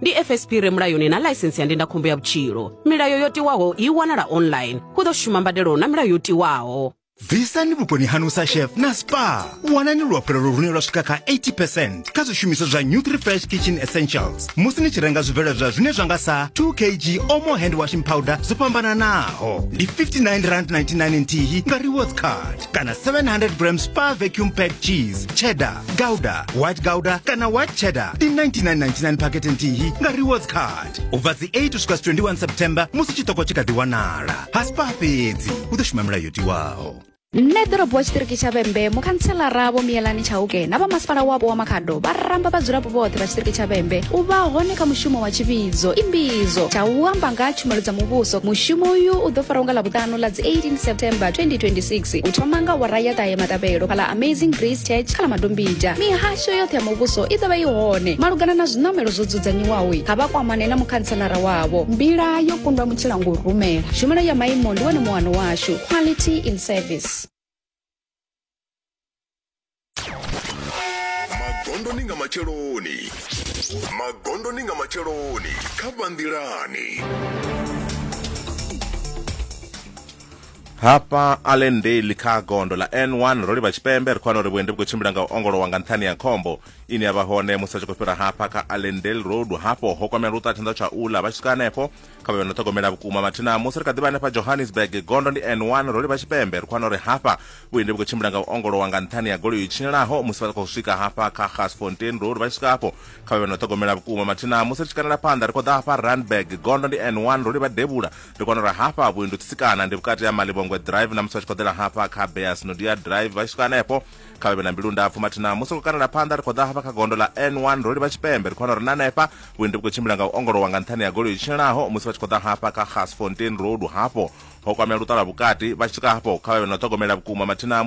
ndi fsp re mulayoni na ḽaisensi ya ndindakhombo ya vhutshilo milayo yo tiwaho i wanala online hu ḓo shuma mbadelo na milayo yo tiwaho bvisani vhuponi hanu sa chef na spa wanani luhafhulelo lune lwa swika kha 80 percent kha zwishumiswa zwa new 3 fresh kitchen essentials musi ni tshi renga zwibveledzwa zwine zwa nga sa 2 kg omo hand washing powder zwo fhambananaho ndi 59 rand 99 nthihi nga rewards card kana 700 grams pa vacuum pack cheese cheddar gouda white gouda kana white cheddar ndi 9999 pakete nthihi nga rewards card ubva dzi 8 usvika 21 september musi chitoko chikadhi wanala hasi pa fhedzi u ḓo shuma milayo tiwaho nṋe ḓorobo wa tshiṱiriki tsha vhembe mukhanselara vho miyelani tshauke na vhamasipala wapo wa makhado vha ramba vhadzulapo vhoṱhe vha tshiṱiriki tsha vhembe u vha hone kha mushumo wa tshivhidzo imbidzo tsha u amba nga ha tshumelo dza muvhuso mushumo uyu u ḓo farwa nga ḽavhuṱanu ḽa dzi 18 september 2026 u thoma nga wara ya ṱahe maṱavhelo fhala amazing grace church kha ḽa madombija mihasho yoṱhe ya muvhuso i ḓovha i hone malugana na zwiṋamelo zwo dzudzanyiwaho ha vha kwamane na mukhantselara wavho mbila yo kundwa mutshila ngo rumela tshumelo ya maimo ndi wone muwano washu quality in service magondoni nga matsheloni magondoni nga matsheloni kha vhanḓilani hafha allendale kha gondo ḽa n1 ro livha tshipembe ri khou wana uri vhuendi vhu khou tshimbila nga u ongolowa nga nṱhani ya khombo ine ya vha hone musi a tshi khou fhira hafha kha allendale road hafho ho kwamela luṱa tshanḓa tsha ula vha tshi swika hanefho kha vhe no ṱhogomela vhukuma mathina musi ri kha ḓivha hanefha johannesburg gondo ndi n1 ro livha tshipembe ri khwana uri hafha vhuendi vhu khou tshimbila nga u ongolowa nga nṱhani ya goloi tshinyelaho musi vha khou swika hafha kha gasfontein road vha tshi swika hafho kha vhe vhe no ṱhogomela vhukuma mathina musi ri tshi kanela phanḓa ri khou ḓa hafha randburg gondo ndi n1 ro livha devhula ri kwana uri hafha vhuendi u tsitsikana ndi vhukati ha malivhongwe drive na musi vha tshi khou ḓela hafha kha beas nodia drive vha tshi swika hanefho kha vha vhe na mbilu ndapfu mathina musi khou kanela phanḓa ri khou ḓa hafha kha gondo ḽa n1 ro livha tshipembe ri khou wana uri na hanefha vhuendi vhu khou tshimbila nga u ongolowa nga nṱhani ya goloi tshilaho musi vha tshi khou ḓa hafha kha gasfontein road hafho ho kwamea luṱala vhukati vha tshi swika hafho kha vha vhe na u ṱhogomela vhukuma mathina